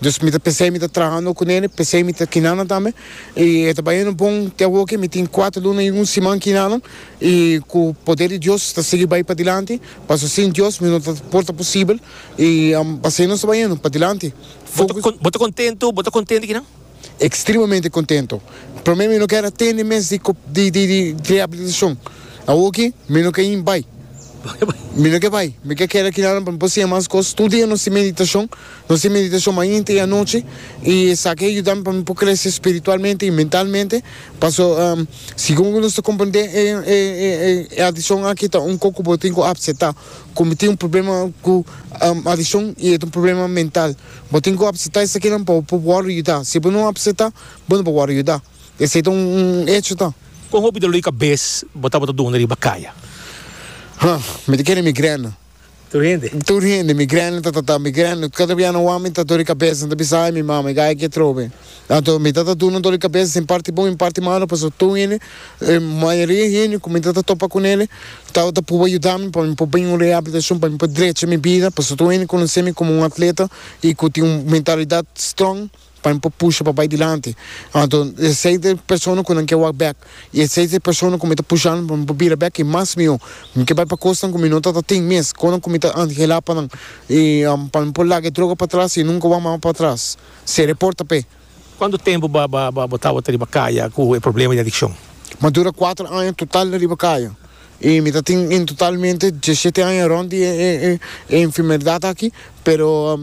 Dus mi ta pensa mi ta traha no ku nene, p'esei mi ta kina nan tambe, i e ta baña no bon. Te awo aki mi tin kuater luna i un siman kina nan, i ku poder di Dios ta sigui bai padilanti, paso sin Dios mi no ta por ta posibel, i p'asei nos ta baña no padilanti. Focus. Bo ta kontentu? Bo ta kontentu ki nan? Ekstremamente kontentu. Promé mi no keda atende mes di di rehabilitashon. Awo aki mi no ke in bai. Bo ke bai? Mi no ke bai, mi ke keda kina nan pa mi por siña mas kos. Tur dia nos tin meditashon. Nos tin meditacion mainta y anochi y esaki a yuda mi pa mi por crece spiritualmente y mentalmente, paso segun cu nos ta comprende e adiccion aki ta un coco bo tin cu acepta cu mi tin un problema cu adiccion y e ta un problema mental, bo tin cu acepta esakinan pa bo worde yuda, si bo no acepta bo no por worde yuda, esey ta un hecho ta. Con hopi dolor di cabes bo tabata duna riba caya? Ha, mi ta kere migrena. Tur hende. Tur hende. Mi granny ta tata. Mi granny. Kanta bia nan wak mi ta dor di kabesa, nan ta bisa ai mi mama i gaya ke trobe. Anto mi ta ta duna dor di kabesa sin parti bon i parti malo pasobra tur hende, mayoria hende ku mi ta ta topa ku nele tabata ta pruba yuda mi pa mi por bin un reabilitashon pa mi por drecha mi bida pasobra tur hende konosemi komo un atleta i ku tin un mentalidat strong. Pa nan por pusha pa bai dilanti. Anto e seis persona ku nan ke wak bèk i e seis persona ku mi ta pusha nan pa mi por bira bèk i mas mihó. Mi ke bai pa kosnan ku mi no ta ta tin mes, kosnan ku mi ta anhelá pa nan i pa mi por laga e droga patras i nunka wak mama patras. Sera e porta p'e. Kuantu tempu bo bo tabata riba kaya ku e problema di adikshon? Mi a dura kuater aña total riba kaya. Y mi ta tin en totalmente diesete aña rond di e enfermedad aki, pero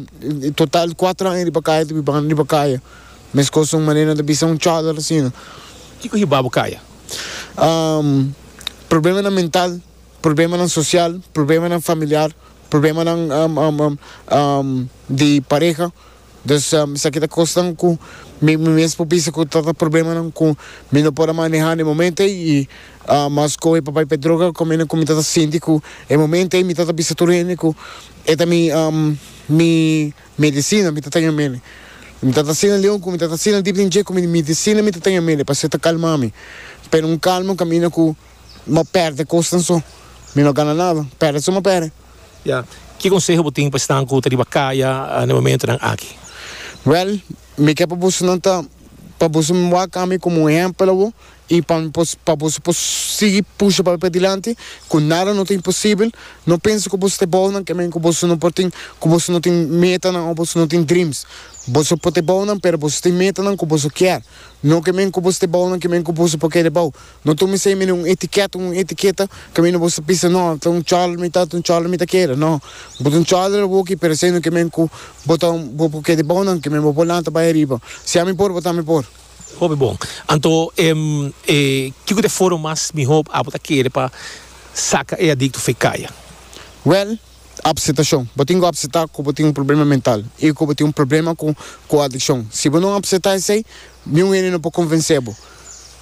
total cuatro aña riba caya ta biba riba caya, mescos un manera nan ta bisa un chadar asina. Kico hiba bo caya? Problemanan mental, problemanan social, problemanan familiar, problemanan di pareha. Dus esaki ta kosnan ku mi mi mes por bisa ku ta ta problemanan ku mi no por a manehá na e momento ei i mas kohe e papay pa e droga kòm hende ku mi ta ta sinti ku e momento ei mi ta ta bisa tur hende ku e ta mi mi medisina mi ta tèn amele mi ta ta asina leon ku mi ta ta asina dip den dje ku mi medisina mi ta tèn amele pasobra e ta kalmá mi pero un kalma kamina ku mi a pèrdè kosnan so mi no a gana nada pèrdè so mi a pèrdè. Ya. Ki konseho bo tin pa esnan ku ta riba kaya na e momentunan aki? Wèl, mi ke pa boso nan ta pa boso wak ami komo un ehèmpel awo i pa mi por pa boso por sigui pusha papia dilanti ku nada no ta imposibel. No pensa ku boso ta e bou nan kimin ku boso no por tin ku boso no tin metanan òf boso no tin dreams. Boso por ta e bou nan pero boso tin metanan ku boso kier. No kimin ku boso ta e bou nan kimin ku boso por keda e bou. No tuma esei mene un etiket, un etiketa, kaminda bo sa pisa, no, ta un chòl mi ta, ta un chòl mi ta keda. No, bo ta un chòl der awoki, pero esei no ke men ku bo ta un, bo por keda bou nan, ke men bo por lanta bai ariba. Si ami por, bo tambe por. Hopi bon. Anto, em, e, kiko ta e forma mas mihó abo ta kere pa saka e adikto fe kaya? Wèl, Apsetacion. Bo tin cu apseta cu bo tin un problema mental y cu bo tin un problema cu cu adiccion. Si bo no apseta esey, ni un hende no por convence bo.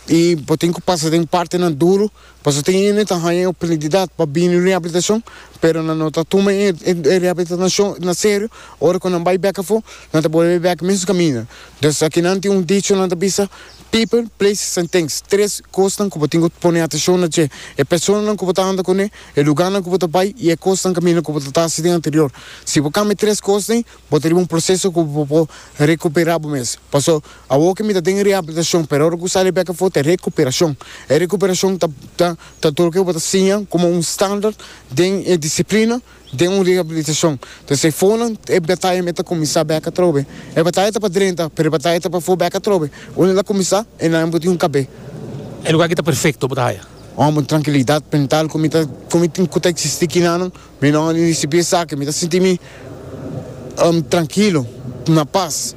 Y bo tin cu pasa den partenan duro, pasobra tin hende ta haya e oportunidad pa bini rehabilitacion, pero nan no ta tuma e e rehabilitanacion na serio, ora cu nan bay bek afo, nan ta bolbe bek e mesun caminda. Dus aki nan tin un dicho nan ta bisa. People, places and things Tres kosnan ku bo tin ku pone atenshon na dje, e personanan ku bo ta anda kuné, e lugánan ku bo ta bai i e kosnan kaminda ku bo ta tasi den anterior. Si bo kambia tres kos dei, bo ta riba un proseso ku bo por rekuperá bo mes. Pasó, awor ke mi ta den reabilitashon, pero ora ku sali e bek afó ta e rekuperashon. E rekuperashon ta ta ta tur ke bo ta siña komo un standard den e disiplina. Den un rehabilitashon. Pues e fonan, e bataya me ta kuminsá bèk atrobe. E bataya ta pa drenta, pero e bataya ta pa for bèk atrobe. Unda el a kuminsá, e na hembra di un kabé. E lugá ki ta perfekto bo ta haya. Hòmber, un trankilidat mental ku mi ta ku mi tin ku ta eksistí kinanan. Mi no risibí esaki. Mi ta sinti mi trankilo, na pas.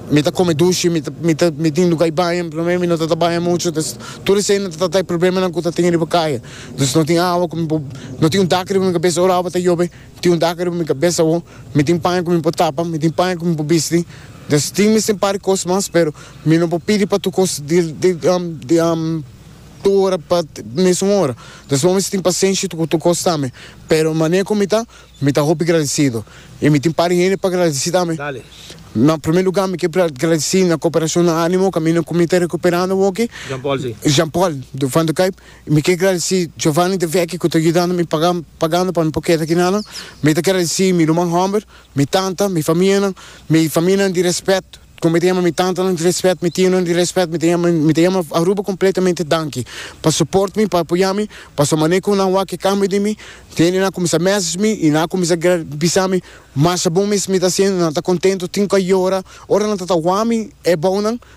Mi ta kome dushi, mi ta mi ta mi tin lugá di baña. Promé mi no ta ta baña muchu, entonces tur esei nan ta trata e problemanan ku ta tin riba kaya. Nos no tin awa ku mi por no tin un taka riba mi kabes ora awa ta yobe tin un taka riba mi kabes awo mi tin paña ku mi por tapa mi tin paña ku mi por bisti nos tin mester un par kos mas pero mi no por pidi pa tur kos di di tur ora pa mesun ora nos bo mester tin pasenshi ku tur kos tambe pero manera ku mi ta mi ta hopi gradisido i mi tin par hende pa gradisi tambe na primer lugar mi ke gradisi na koperashon na animo kaminda ku mi ta rekuperando awoke Jean Paul Dukaip. Mi ke gradisí Giovanni de Vecchi ku ta yudando mi pagan pagando pa mi por keda aki nan. Mi ta gradisí mi ruman hòmber, mi tanta, mi famianan, mi famianan di rèspèt, ku mi ta yama mi tantanan di rèspèt, mi tionan di rèspèt, mi ta yama mi ta yama Aruba kompletamente danki pa soport mi, pa apoyá mi, paso manera ku nan wak e kambio di mi, hende nan a kuminsá mèseshe mi i nan a kuminsá gra bisa mi masha bon mes mi ta hasiendo, nan ta kontentu tin ku a yora, ora nan ta tawá mi e bounan.